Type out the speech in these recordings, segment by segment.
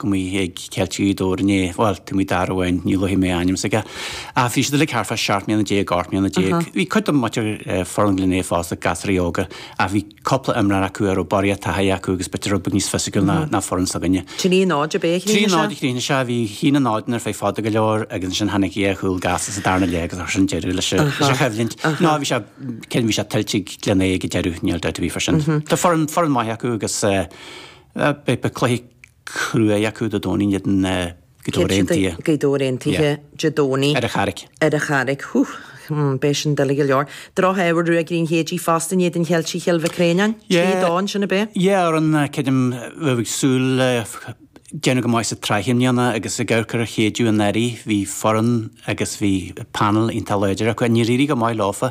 go mba í ag ceilt í dó ar an é, bhuel, tá imreoir amháin, ní luafaidh mé a ainm s'aige, ach bhí siad uilig thart fá seacht mbliana déag, ocht mbliana déag. Bhí cuid den mutter forionglaine ag fás ag gasraí óga, ach bhí cúpla imreoir acu a raibh barraíocht taithí acu agus b'fhéidir rud beag níos fisiciúla ná foireann s'againne. Trí náid ab ea a chríochnaigh sé? Trí náid a chríochnaigh sé, bhí chinn an náideanna ar feadh fada go leor agus ansin tháinig dhá chúl gasta sa darna leath agus ansin deireadh leis a choimhlint. Ná bhí sé, bhí sé tuillte ag Glenea ag deireadh, níl dabht ar bith fá sin. Tá foireann maith acu agus, Beidh cluiche cruaidh acu Dé Domhnaigh in éadan Ghaoth Dobhair Aontaithe. Gaoth Dobhair Aontaithe Dé Domhnaigh. Ar an Charraic. Ar an Charraic. Whew. Beidh sin doiligh go leor. Drochthoradh ag Ruagairí an Chéididh fosta in éadan Cheiltigh Chill Mhic Réanáin. Trí dó ansin, ab ea. Yeah foireann creidim a raibh muid ag súil le déanamh go maith sa tsraith i mbliana agus ag amharc ar an Chéideadh anuraidh bhí foireann agus bhí panel iontach láidir acu. Níor éirigh go maith leofa.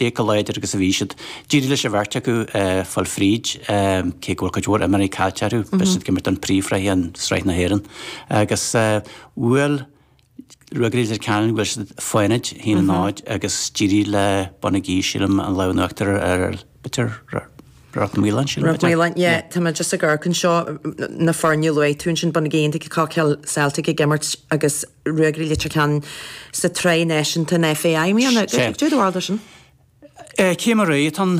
Cé chomh láidir agus a bhí siad, d'éirigh leis an bheirt acu fáil fríd, cé go bhfuil cuid mhór imreoirí caillte acu. Beidh siad ag imirt an phríomhshraith in Sraith na hÉireann agus bhuail Ruagairí Leitir Ceanainn, bhuail siad Fánaid, 1-0, agus d'éirigh le Bonagee, sílim, an lámh in uachtar ar, b'fhéidir, Ráth Maoláin, sílim. Ráth Maoláin, yeah. Tá mé just ag amharc anseo, na foirne a luaigh tú ansin, Bonagee, Cockhill Celtic ag imirt agus, Ruagairí Leitir Ceanainn sa tSraith Náisiúnta na FAI i mí an Eagar. Ag deireadh bharr sin. Cad é mar atá an,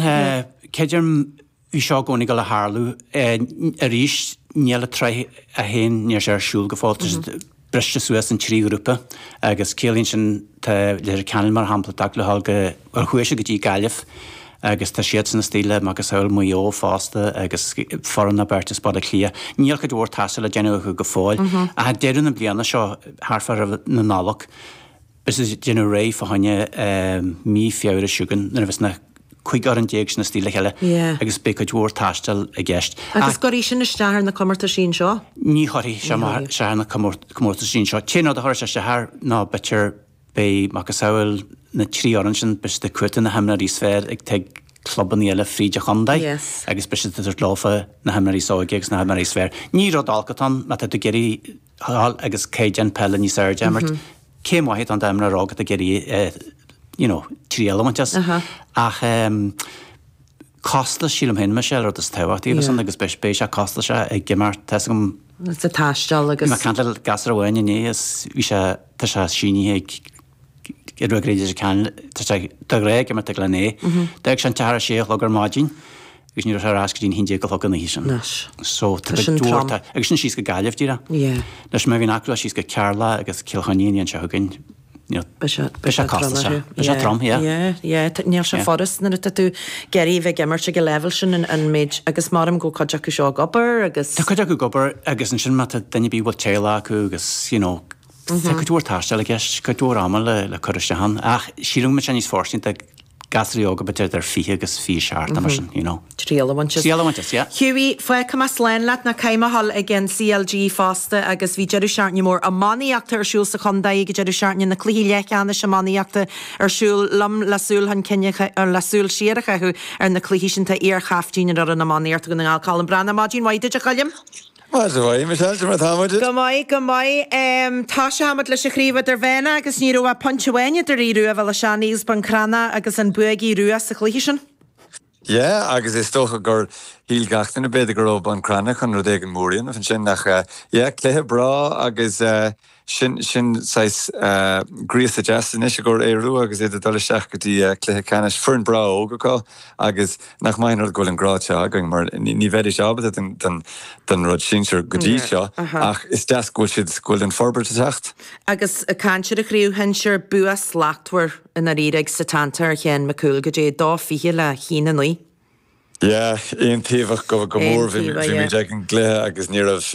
creidim bhí seo i gcónaí ag gabháil a tharlú arís, níl an tsraith 1, níl sé ar siúl go fóill, tá siad briste suas in trí ghrúpa agus ciallaíonn sin tá Leitir Ceanainn mar shampla ag teacht le ghabháil go Ar chuaigh siad go dtí Gaillimh? Agus tá siadsan istigh le macasamhail Mhaigh Eo fosta agus foireann nó beirt as Baile Átha Cliath. Níl cuid mhór taistil le déanamh acu go fóill ach ag deireadh na bliana seo, thart fá am na Nollag, is ag déanamh réidh fá choinne mí Feabhra chugainn nuair a bheas na 15 fhoireann sin istigh le chéile agus beidh cuid mhór taistil i gceist. An gcuirfidh sin isteach ar na comórtais anseo? Ní chuirfidh sé isteach ar na comórtais anseo. Cén rud a chuir sé isteach air ná b'fhéidir Beidh macasamhail na trí fhoireann sin, beidh siad ag cuartú na himreoirí is fearr atá ag clubannaí eile fríd an chontae agus beidh siad ag tabhairt leofa na himreoirí is óige agus na himreoirí is fearr. Ní rud olc atá ann má tá tú ag iarraidh gabháil agus caighdeán peile níos airde a imirt. Céim mhaith atá ann d'imreoir óg atá ag iarraidh you know triail a bhaint as ach eh, costas, sílim féin, Michelle, rud is tábhachtaí agus an, agus beidh, beidh sé costasach ag imeacht, tá's agam, sa taisteal agus. Bhí mé ag caint le gasúr amháin inné is bhí sé, tá sé sínithe ag Ruagairí Leitir Ceanainn, tá sé dá rá ag imirt ag Glenea, d'fhág sé an teach ar a sé a chlog ar maidin agus ní raibh sé ar ais go dtí an haon déag a chlog an oíche sin. Anois. So tá sin trom. Agus sin síos go Gaillimh díreach. Yeah. Anois má bhíonn acu le ghabháil síos go Ceatharlach agus Cill Chainnigh an bhliain seo chugainn. Beidh sé casta, sea. Beidh sé trom, yeah. Yeah, yeah. Níl sé furast nuair atá tú ag iarraidh a bheith ag imirt ag an leibhéal sin an méid, agus maram go bhfuil cuid acu seo ag obair agus. Tá cuid acu ag obair agus ansin má tá duine ar bith a bhfuil teaghlach acu agus you know tá cuid mhór taistil i gceist, cuid mhór ama le cur isteach ann ach sílim go mbeidh sé níos fóirsteanaí gasraí óga b'fhéidir idir 20 agus 27 nó mar sin you know. Triail a bhaint as. Triail a bhaint as, yeah. Hughie, fágfaidh mé slán leat, nó caithfidh mé a dhul ag an CLG fosta agus bhí deireadh seachtaine mór iománaíochta ar siúl sa chontae ag deireadh seachtaine, na cluichí leathcheannais iománaíochta ar siúl liom le súil chun cinn a, le súil siar a chaitheamh ar na cluichí sin. Tá iar-chaiftín ar fhoireann iománaíochta Dhún na nGall, Colm Breathnach, maidin mhaith duit a Choilm! Maidin mhaith Michelle, cad é mar atáimid. Go maith, go maith. Tosóidh muid leis an chraobh idirmheánach agus ní raibh ach pointe amháin idir Aodh Rua Bhéal Átha Seanaidh agus Bun Cranncha agus an bua ag Aodh Rua sa chluiche sin. Yeah, agus is dócha gur shíl gach duine, b'fhéidir, go raibh Bun Cranncha chun rud éigin mór a dhéanamh ansin ach, yeah, cluiche breá agus. Sin sin saghas gríosadh deas anois i gcomhair Aodha Rua agus iad ag dul isteach go dtí cluiche ceannais. Foireann breá óg acu agus nach maith an rud go bhfuil an grád seo againn mar ní bheidís ábalta don don rud sinsir go dtí seo ach is deas go bhfuil siad go bhfuil an forbairt ag teacht. Agus ag caint ar an chraobh shinsir, bua slachtmhar i ndáiríre ag Setanta ar Sheán Mac Cumhaill go dtí a dó fichead le haon a naoi. Yeah, aontaobhach go go mór bhí mé ag an gcluiche agus ní raibh.